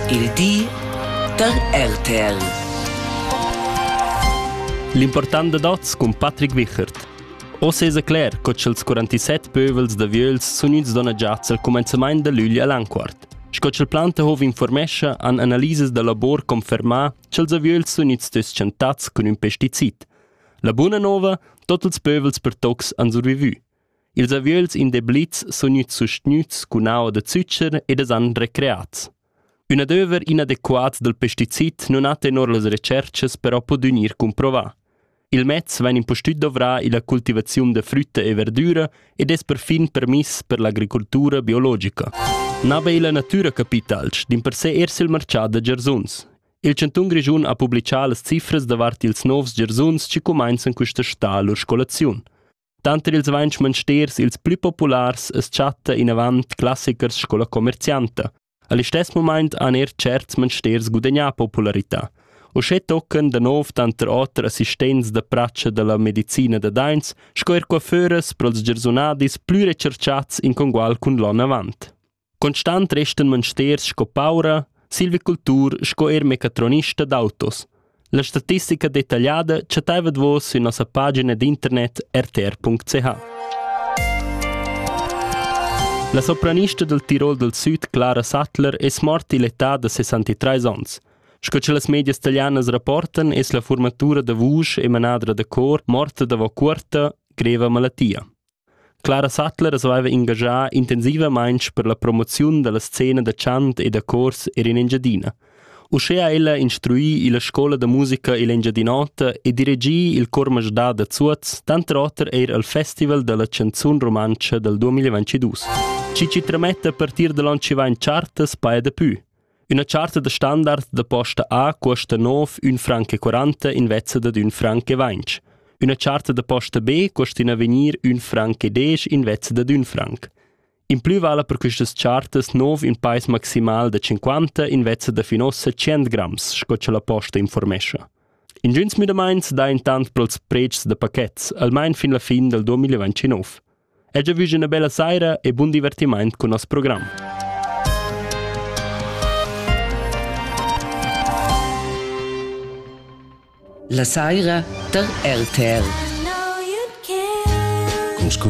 Il di da RTL. L'important dad oz cun Patrick Wichert. Oz es cler co cha'ls 47 pövels da vieus sun gnüts donagiats al cumenzamaint da lügl a Lanquart. Sco cha'l Plantehov informescha han analisas da labor confermà cha'ls aviöls sun gnits tschentats cun ün pesticid. La buna nouva, tot ils pövels per tocs han survivü. Ils aviöls in da Blits sun gnüts sustgnüts cun aua da zücher ed es han recreats. Ün adöver inadequat dal pesticid nun ha tenor las retscherchas però pudü gnir cumprovà. Il mez vain impustüt dovrà illa cultivaziun da frütta e verdüra ed es perfin permiss per l'agricultura biologica. Na be illa natüra capitalsch, dimpersè eir sül marchà da giarsuns. Il chantun Grischun ha publichà las cifras davart ils novs giarsuns chi cumainzan quista sta lur scolaziun. Tanter ils vainch mansters ils plü populars as chatta inavant classichers sco la comercianta. A listess mumaint han eir tscherts mansters gudagnà popularità. Uschè toccan da nouv tanter oter assistents da pratscha da la medicina da daints sco eir coiffeuras pro'ls giarsunadis plü recharchats in congual cun l'on avant. Constant restan monsters sco paura, silvicultur sco er mecatronista d'autos. La statistica detagliada chattava vos sün nossa pagina d'internet rtr.ch. La sopranista del Tirol del Süd, Clara Sattler, es morta l'età da 63 ans. Sco che las medias italianas rapportan, es la formatura da vusch e manadra da cor morta davo cuorta greva malattia. Clara Sattler saveva engaschar intensivamain per la promoziun dalla scena da chant e da chors er in Engiadina. Uschea ha ella instrui illa scoula da musica ill'Engiadin'Ota e dirigì il Chor Masdà da Zuoz, tanter oter eir al Festival da la chanzun rumantscha dal 2022. Chi chi trametta a partir da l'on chi vain chartas paja dapü. Üna charta da standard da posta A cuosta 9 ün franc e quaranta invezza dad ün franc e vainch. Üna charta da posta B cuosta in avegnir ün franc e desch invezza dad ün franc. In plü vala per quistas chartas nouv ün pais maximal da 50 invezza da fin uossa 100 grams, sco cha la posta informescha. Ingüns müdamaints dà intant pro'ls predschs da pachets, almain fin la fin dal 2029. E già vus üna bella saira e bun divertimaint cun nos program. La saira tar RTL. Con sco